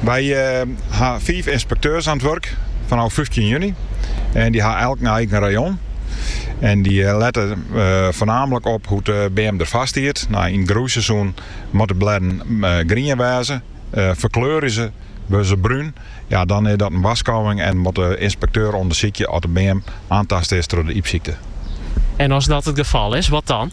Wy ha fiif ynspekteurs aan it wurk fanôf fyftjin juny en dy ha elk in eigen rayon. En dy lette foarnamlik op hoe't de beam derfoar stiet. Nei in groeiseizoen moatte blêden grien wêze. Ferkleurje se, wurde se brún, ja dan is dat in warskôging en moat de ynspekteur ûndersykje oft de beam aantast is troch de ypsykte. En as dat it gefal is, wat dan?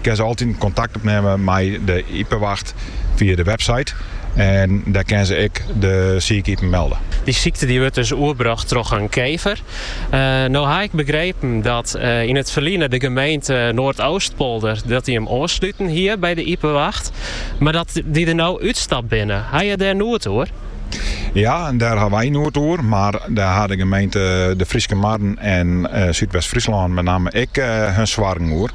Kinne se altiten kontakt opnimme mei de Iepewacht fia de website en dêr kinne se ek de sike ipen melde. Dy sykte dy wurdt dus oerbrocht troch in kever. No ha ik begrepen dat yn it ferline de gemeente Noardoostpolder dat dy him oansluten hie by de Iepewacht, mar dat dy der no útstapt binne. Ha je dêr noed oer? Ja, dêr ha wy noed oer, mar dêr ha de gemeente De Fryske Marren en Súdwest-Fryslân met namme ek har soargen oer.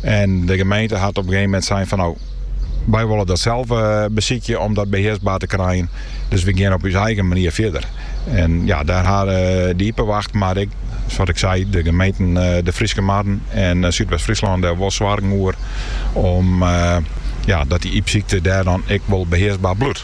En de gemeente hat op in gegeven moment sein fan no, wy wolle dat sels eh, besykje om dat behearsber te krijen. Dus we gean op ús eigen manier fierder. En ja, dêr ha eh, de Iepewacht, mar ek, sa't ik sei, de gemeenten eh, De Fryske Marren en Súdwest-Fryslân der wol soargen oer om ja, dat dy ypsykte dêr dan ek wol behearsber bliuwt.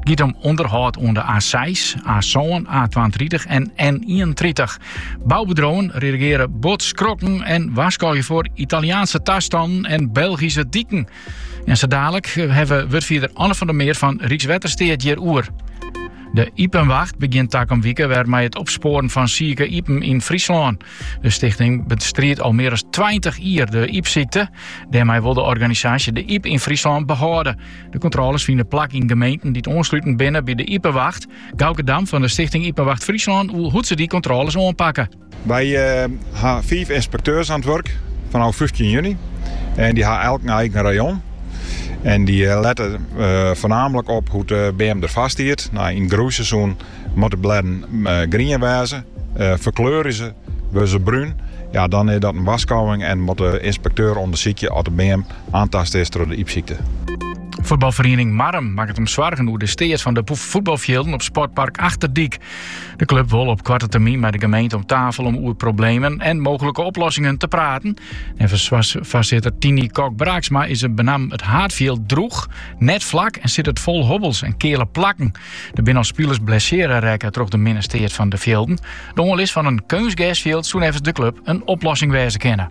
It giet om ûnderhâld oan de A6, A-sân, A-twaentritich en N-ienentritich. Boubedriuwen reagearje bot skrokken en warskôgje foar Italiaanske tastannen en Belgyske diken. En sa daalik hawwe wy wurdfierder Anne van der Meer fan Rykswettersteat hjiroer. De Iepewacht begjint takom wike wer mei it opspoaren fan sike ipen yn Fryslân. De stichting bestriidt al mear as tweintich jier de ypsykte. Dêrmei wol de organisaasje de yp yn Fryslân behâlde. De kontrôles fine plak yn gemeenten dy't oansluten binne by de Iepewacht. Gauke Dam fan de Stichting Iepewacht Fryslân oer hoe't se dy kontrôles oanpakke. Wy ha fiif ynspekteurs aan it wurk fanôf fyftjin juny en dy ha elk in eigen rayon. En dy lette foarnamlik op hoe't de beam derfoar stiet. No yn it groeiseizoen moatte blêden grien wêze. Ferkleurje se, wurde se brún, ja dan is dat in warskôging en moat de ynspekteur ûndersykje oft de beam Aantast is troch de ypsykte. Fuotbalferiening Marrum makket him soargen oer de steat fan de fuotbalfjilden op sportpark Achterdyk. De klup wol op koarte termyn mei de gemeente om tafel om oer problemen en mooglike oplossingen te praten. Neffens foarsitter Tini Kok-Braaksma is benammen it haadfjild droech, net flak en sit it fol hobbels en keale plakken. Der binne al spilers blessearre rekke troch de minne steat fan de fjilden. De oanlis fan in keunstgersfjild soe neffens de klup in oplossing wêze kinne.